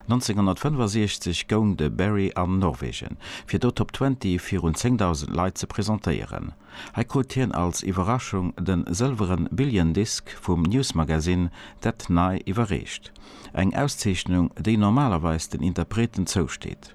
1965 goung de Berry an Norwegen, fir do Top Twenty virun 10.000 Leit ze presentéieren. Hei krut hien als Iwwerraschung de sëlweren Billion Disc vum Newsmagazin That Nigh iwwerreecht, eng Auszeechnung, déi normalerweis den Interpreten zousteet.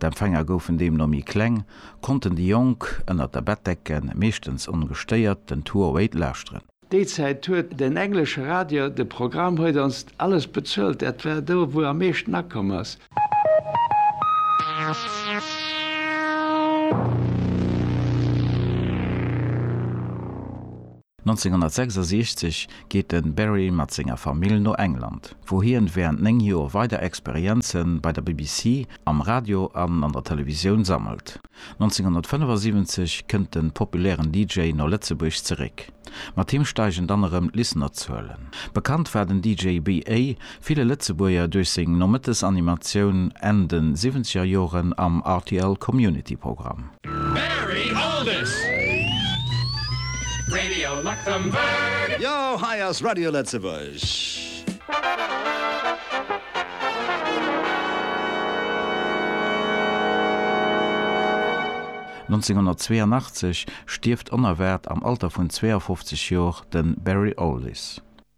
D'Empfänger goufen deemno méi kleng, konnten déi Jonk ënnert der Bettdecke meeschtens ongestéiert den Tour Wait lauschteren. Déi Zäit huet den englesche Radio de Programm Huet onst alles bezuelt, dat war do, wou am meeschten akomm ass. 1966 geet de Barry mat senger Famill no England, wou hien während 9 Joer weider Experienzen bei der BBC, am Radio an an der Televisioun sammelt. 1975 kënnt den populären DJ no Lëtzebuerg zeréck. Mat him steigen dann erëm d'Listenerzuelen. Bekannt war den DJ BA Ville Lëtzebuerger duerch seng Nomëttes-Animatioun Enn de siwwenzeger Joren am rtl Community Programm. Barry Allders, Radio Luxembourg. Jo, hei ass Radio Lëtzebuerg. Nonzénhunnertzweeënachtzeg stierft onerwaart am Alter vun 52 Joer de Barry Alldis.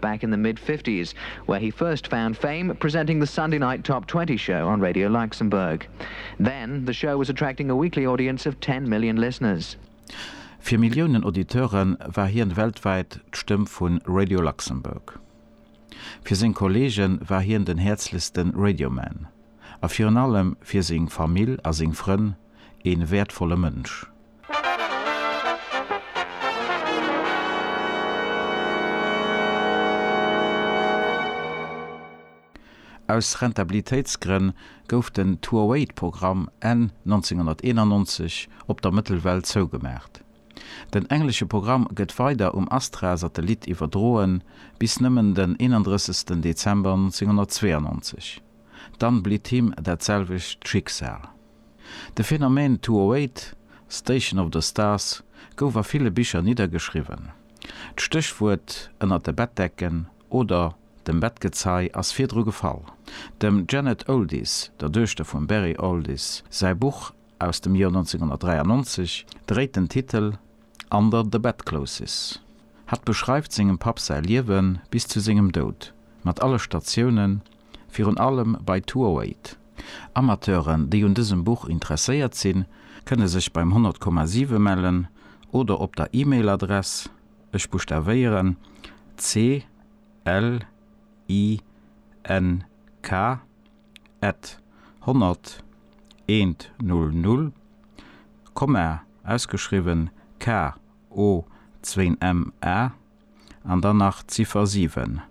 back in the mid fifties, where he first found fame presenting the Sunday night Top Twenty show on Radio Luxembourg. Then, the show was attracting a weekly audience of ten million listeners. Fir Milliounen Auditeure war hien weltwäit d'Stëmm vu Radio Luxembourg. Fir seng Kolleegen war hien den häerzlechste Radioman a virun allem fir seng Famill a seng Frënn een wäertvolle Mënsch. Aus Rentabilitéitsgrënn gouf den Tour-Weight-Programm Enn 1991 op der Mëttelwell zougemaacht. Den englesche Programm gëtt weider um Astra-Satellit iwwerdroen, bis nëmmen den 31. Dezember 1992. Dann blitt him dat selwecht Schicksal. De Phänomen Two-O-Eight, Station of the Stars gouf a ville Bicher niddergeschriwwen. D'Stéchwuert ënnert de Bettdecken oder dem Bettgezei ass virdru gefall. Dem Janet Oldies, der Duechter vum Barry Oldies, säi Buch aus dem Joer 1993 dréit den Titel Under the Bedclothes. Hatt beschreift sengem Papp säi Liewe bis zu sengem Doud, mat alle Statiounen, Virun allem bei Tuoheit. Amateuren, déi un dësem Buch interesséiert sinn, kënne sech beim 100,7 mellen oder op der E-Mail Adress, ech buschtavéieren, clink at 100 eent null null, komma ausgeschriwwen k o zwéin m a. An dann nach d'Ziffer 7,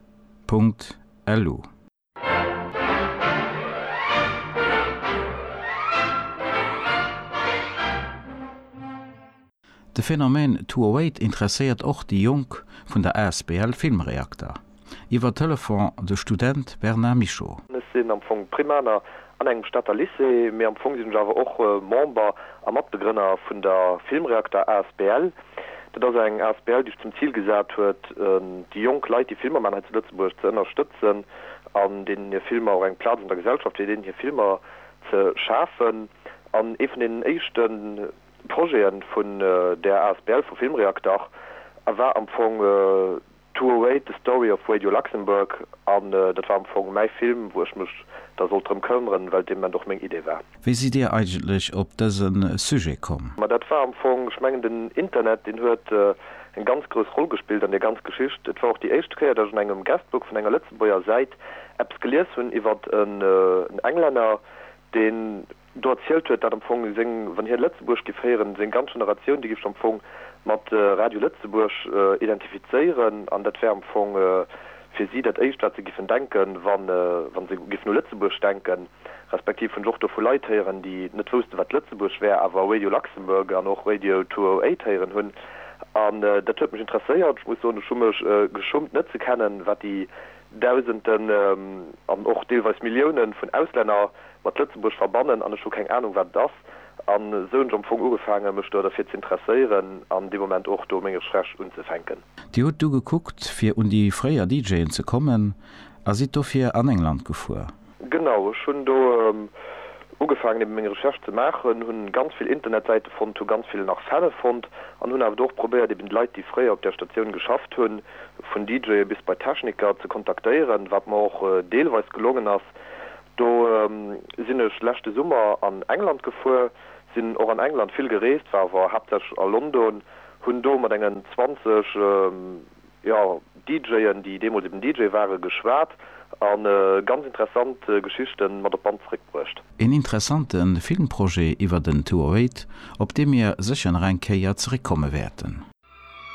Punkt LU. De Phänomen Tuoeet interesséiert och déi Jonk vun der asbl Film Reakter. Iwwer Telefon de Student Bernard Mischo. Ech sinn am Fong Primaner An engem Stater Lycée, mee am Fong sinn ech awer och Member a Matbegrënner vun der Filmreakter asbl. Dat ass eng asbl, déi sech zum Zil gesat huet, déi jonk Leit, déi Filmer maachen hei zu Lëtzebuerg, ze ënnerstëtzen an deenen hir Filmer och eng Plaz an der Gesellschaft, fir deenen hir Filmer ze schafen. An ee vun deenen éischte Projete vun där asbl, vu Filmreakter, war am Fong, To await the story of Radio Luxembourg an dat war am Fong mäi Film, wou ech mech da sollt drëm këmmeren, well et dee Moment och meng Idee war. Wéi sidd Dir eigentlech op dëse Sujet komm? Ma dat war am Fong, ech mengen den Internet deen huet eng ganz grouss Roll gespillt an där ganz Geschicht. Et war och déi éischte Kéier, datt ech an engem Guestbook vun enger Lëtzebuerger Säit eppes gelies hunn iwwert en Englänner, deen, do erzielt huet, dat am Fong seng, wann hien Lëtzebuerg giff héieren, seng ganz Generatioun, déi giff sech am Fong mat Radio Lëtzebuerg identifizéieren an dat wär am Fong fir si dat éischt, wat se giffen denken, wa se giffen u Lëtzebuerg denken, respektiv hunn ech och do vu Leit héieren, déi net woussten, wat Lëtzebuerg wär, awer Radio Luxembourg an och Radio 208 héieren hunn. An dat huet mech interesséiert. Ech muss soen, ech hu mech geschummt, net ze kennen, wat déi Dausenden an och deelweis Milliounen vun Auslänner mat Lëtzebuerg verbannen an ech hu keng Ahnung wat et ass. An esou hunn ech am Fong ugefaangen mech do derfir ze interesséieren an dee Moment och do meng Recherche unzefänken. Dir hutt du gekuckt fir un déi fréier DJen ze kommen a sidd dofir an England gefuer. Genau, ech hunn do ugefaangen eben meng Recherche ze maachen, hunn ganz vill Internetsäite fonnt, hu ganz vill nach Fäll fonnt an hunn awer do och probéiert eben d'Leit déi fréier op där Statioun geschafft hunn, vun DJe bis bei Techniker, ze kontaktéieren, wat mer och deelweis gelongen ass. Do sinn ech leschte Summer an England gefuer, sinn och an England vill gereest, war awer haaptsächlech a London, hunn do mat engen 20 jo DJen déi deemools eben DJ waren, geschwat a ganz interessant Geschichten mat op d'Band zeréck bruecht. Een interessanten Filmprojet iwwert en 208 op dee mir sécher nach eng Kéier zeréck komme wäerten.